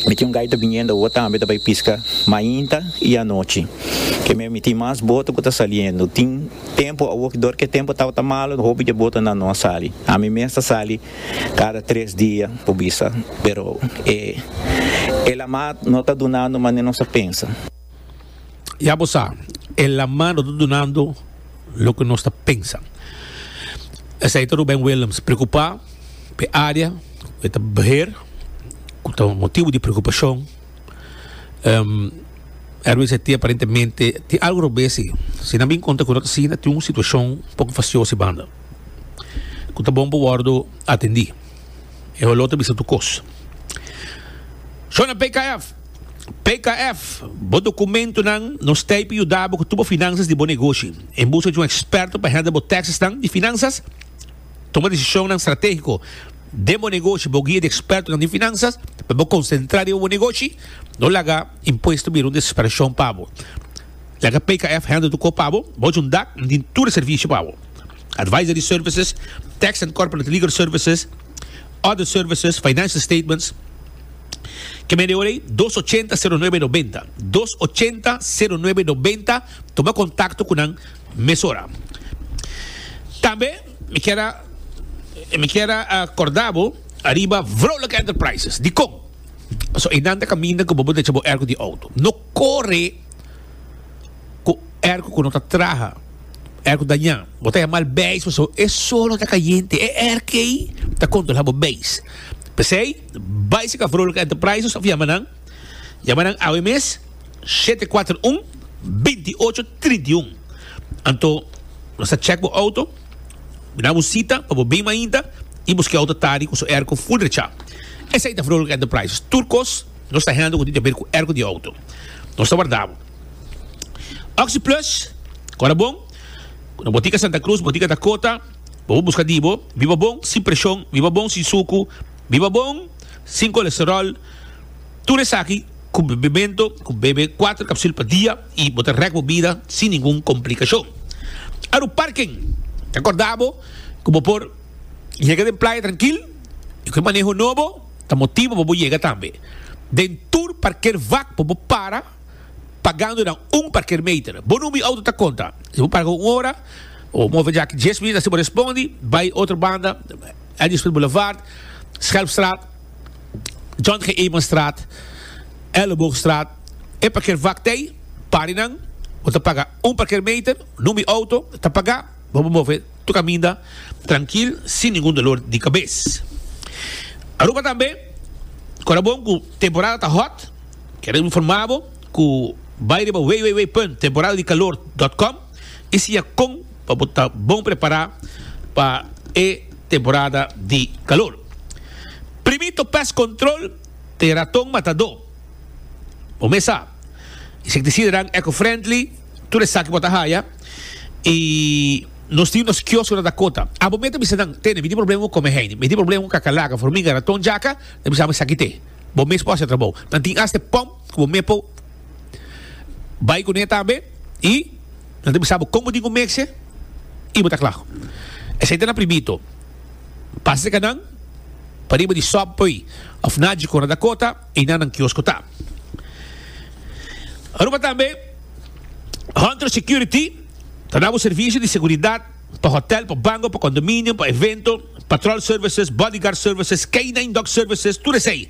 Mi tin un gaita biniendo awo tambe ta bai pisca mainta y anochi. Kemey mi tin mas boto cu ta saliendo. Tin tempo awo cu dor ke tempo tabata malo hopi dje boto nan no a sali. Ami mes ta sali cada tres dia po bisa pero e lamat no ta dunando mane nos a pensa. Ya bo sa, e laman no ta dunando loke nos ta pensa. Esei ta Ruben Willems preocupa p'e area cu e ta beheer, cu ta motibo di preocupacion. Um, Erwin Seti aparentemente tin algo robes si. Si nan bin conta cu no ta asina, tin un situacion un poco facioso e banda, cu ta bon pa wordo atendi. E holor ta bisa tur cos. Shona PKF! PKF, Bo dokumentunan no stay pa yuda bo ku tur bo finanzas di bo negoshi. En buska di un eksperto pa hèndel bo tèksesnan di finanzas, tuma desishonnan stratégiko den bo negoshi. Bo guia di ekspertonan di finanzas pa bo konsentrá riba bo negoshi. No laga impuesto bira un desesperashon pa bo. Laga PKF hèndel tur kos pa bo. Bo junta nan tin tur e servisio pa bo, Advisory services, Tax and Corporate Legal Services, Other services, financial statements, ke mende ora ei dos ochenta sero nuebe nobenta, dos ochenta sero nuebe nobenta, tuma kontakto ku nan mesora. Tambe mi kier a mi kier a a korda bo ariba Vrolijk Enterprises, dikon? Paso einan ta kaminda ku bobo ta echa bo erko di outo, no kore. cu erco cu no ta traha, erco daña, bo ta yamal beis paso e solo ta cayente, e erkey ta controla bo beis. Pesey, bay si Cafroluk Enterprises of yama nan, yama nan awe mes, shete kuater un, binti ocho trinta i un. Anto, nos ta check bo auto, bina bo cita pa bo bin mainta y bo ski auto ta di cu su erco full recha. Esey ta Froluk Enterprises, tur cos nos ta handle cu tin ta haber cu erco di auto. Nos ta warda bo. Oxi Plus, kora bon, ku na Botika Santa Cruz, Botika Dakota, bo por buska di bo, biba bon, sin preshon, biba bon, sin suku, biba bon, sin kolesterol, tur esaki ku bebemento, ku bebe kuater kapsul pa dia i bo ta rèk bo bida sin ningun komplikashon. Aru Parken, ta korda bo ku bo por yega den playa trankil i ku e maneho nobo, Ta motibu pa bo yega tambe. Den tur parker vak por bo para pagando nan un parker meter. Bo number di auto ta konta. Si bo parga un ora o move djaki dies minut asi bo respondi, bai otro banda, Edisville Boulevard, Schelpstraat, John G. Eemanstraat, Elleboogstraat. E parker vak ta ei, pari nan, bo ta paga un parker meter, number di auto ta paga, bo bo move. Lo caminda trankil sin ningun dolor di cabes. Aruba tambe ora bon cu temporada ta hot, quiero informa bo cu bay riba www.temporadadicalor.com y siña con pa bo ta bon prepara pa e temporada di calor. Primito Pest Control te raton matador. Bo mes sa. Insektisidanan eco-friendly, tur esaki bo ta haya y nos tin nos kiosco nan ta cota. Abo me ta bisa nan, Tene, mi tin problema cu come heini, mi tin problema cu cacalaca, formiga, raton, jaca, ta bisa ami saki te. Bo mes por haci e trabao. Nan tin hasta e pom cu bo me por bay cune tambe y nan ta bisa bo con bo tin cu mecse y bo ta cla. Esey ta na primito. Pasa cerca nan, pariba di sop poi of Nagico nan ta cota. i na nan kiosko ta. Aruba tambe Hunter Security ta na bo servisio di seguridat pa hotel, pa bango, pa kondominio, pa evento, patrol services, bodyguard services, K-nine dog services, tur esei.